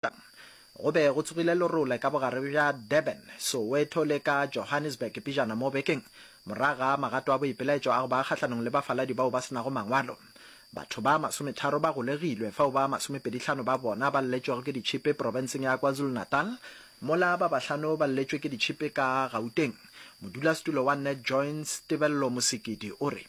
Go be go tsogile lerole ka bogare bja Durban, Soweto le ka Johannesburg pejana mo bekeng. Morago ga magato a boipelaetšo a go ba kgahlanong le bafaladi bao ba se nago mangwalo, batho ba masometharo ba golegilwe, fao ba masomepedihlano ba bona ba lletšwego ke ditšhipi profenseng ya KwaZulu-Natal, mola ba bahlano ba lletšwe ke ditšhipi ka Gauteng. Modulasetulo wa NetJoins, Tebello Mosekedi o re.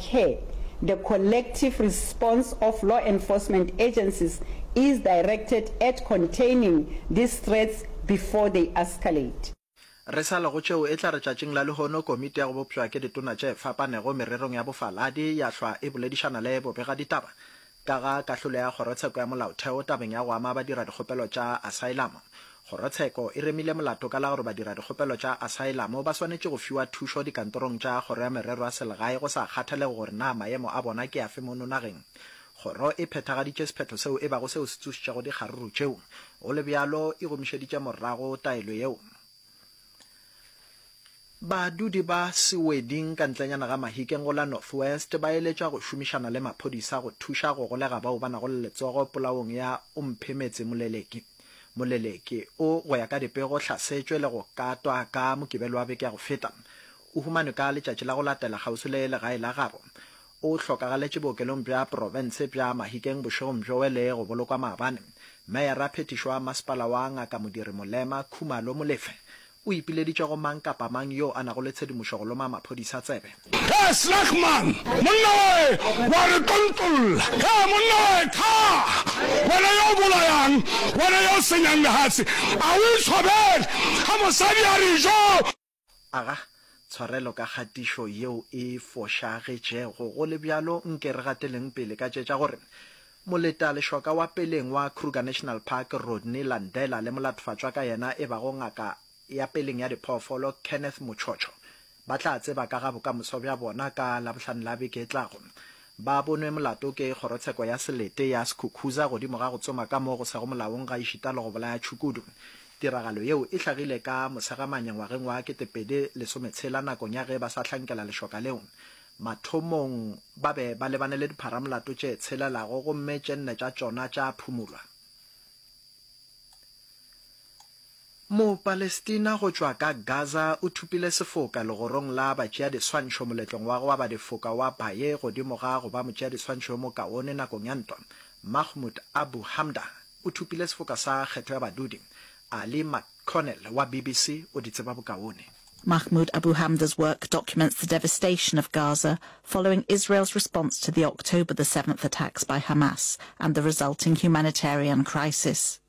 Care, The collective response of law enforcement agencies is directed at containing these threats before they escalate. Re sa le go tšeo, e tla re tšatšing la lehono Komiti ya go Bopša ke Ditona tše Fapanego Mererong ya Bofaladi ya hlwa e boledišana le bobegaditaba Ka ga kahlolo ya Kgorotsheko ya Molaotheo tabeng ya go ama badiradikgopelo tša asaelamo, Kgorotsheko e remile molato ka la gore badiradikgopelo tša asaelamo ba swanetše go fiwa thušo dikantorong tša Kgoro ya Merero ya Selegae go sa kgathalege gore na maemo a bona ke afe mono nageng. Kgoro e phethagaditše sephetho seo e bago seo se tsošitšego dikgaruru tšeo, go le bjalo e gomišeditše morago taelo yeo. Badudi ba Seweding ka ntlenyana ga Mahikeng go la North West ba eletšwa go šomišana le maphodisa go thuša go golega bao ba nago le letsogo polaong ya Omphemetse Moleleki. Moleleki o, go ya ka dipego, hlasetšwe le go katwa ka Mokibelo wa beke ya go feta. O humanwe ka letšatši la go latela kgauswi le legae la gabo. O hlokagaletše bookelong bja profense bja Mahikeng bošegong bjo wele go bolokwa maabane. Meyara-phethišo wa masepala wa Ngaka Modiri Molema, Khumalo Molefe, o ipileditše go mang kapa mang yo a nago le tshedimošo go loma maphodisa tsebe. He slag man, monna wae wa re tontolla, he monna wae thaa! Wena yo o bolayang, wena yo o senyang lehatse, a o itshwabele ha mosadi a re jo! Aga tshwarelo ka kgatišo yeo e fošagetšego. Go le bjalo, nke re gateleng pele ka tše tša gore moletalešoka wa peleng wa Kruger National Park, Rodney Landela, le molatofacwa ka yena e bago ngaka ya peleng ya diphoofolo, Kenneth Muchocho, ba tla tseba ka ga bokamoso bja bona ka Labohlano la beke e tlago. ba bonwe molato ke Kgorotsheko ya Selete ya Skukuza godimo ga go tsoma ka mo go sego molaong gaešita le go bolaya tšhukudu. Tiragalo yeo e hlagile ka Mosegamanya ngwageng wa ketepedi lesome tshela nakong ya ge ba sa hlankela lešoka leo. Mathomong ba be ba lebane le dipharamolato tše tshelelago gomme tše nne tša tšona tša phumulwa. Mo-Palestina go tšwa ka Gaza o thupile sefoka legorong la batšeadiswantšho moletlong wa go aba difoka wa Baye godimo ga go ba motšeadiswantšho yo mokaone nakong ya ntwa. Mahmoud Abu Hamda o thupile sefoka sa kgetho ya badudi. Ali McConnell wa BBC o di tseba bokaone. Mahmoud Abu Hamda's work documents the devastation of Gaza following Israel's response to the October the Seventh attacks by Hamas and the resulting humanitarian crisis.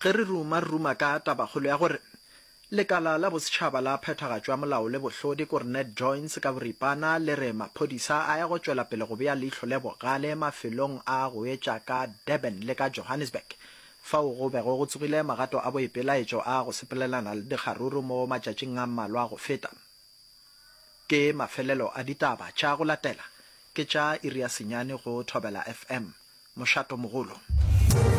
Ge re ruma-ruma ka tabakgolo ya gore Lekala la Bosetšhaba la Phethagatšo ya Molao le Bohlodi, Coronet Joints ka boripana, le re maphodisa a ya go tšwela pele go bea leihlo le bogale mafelong a go etša ka Durban le ka Johannesburg, fao go bego go tsogile magato a boipelaetšo a go sepelelana le dikgaruru mo matšatšing a mmalwa go feta. Ke mafelelo a ditaba tša go latela, ke tša iri ya senyane go Thobela FM. Mošato-mogolo.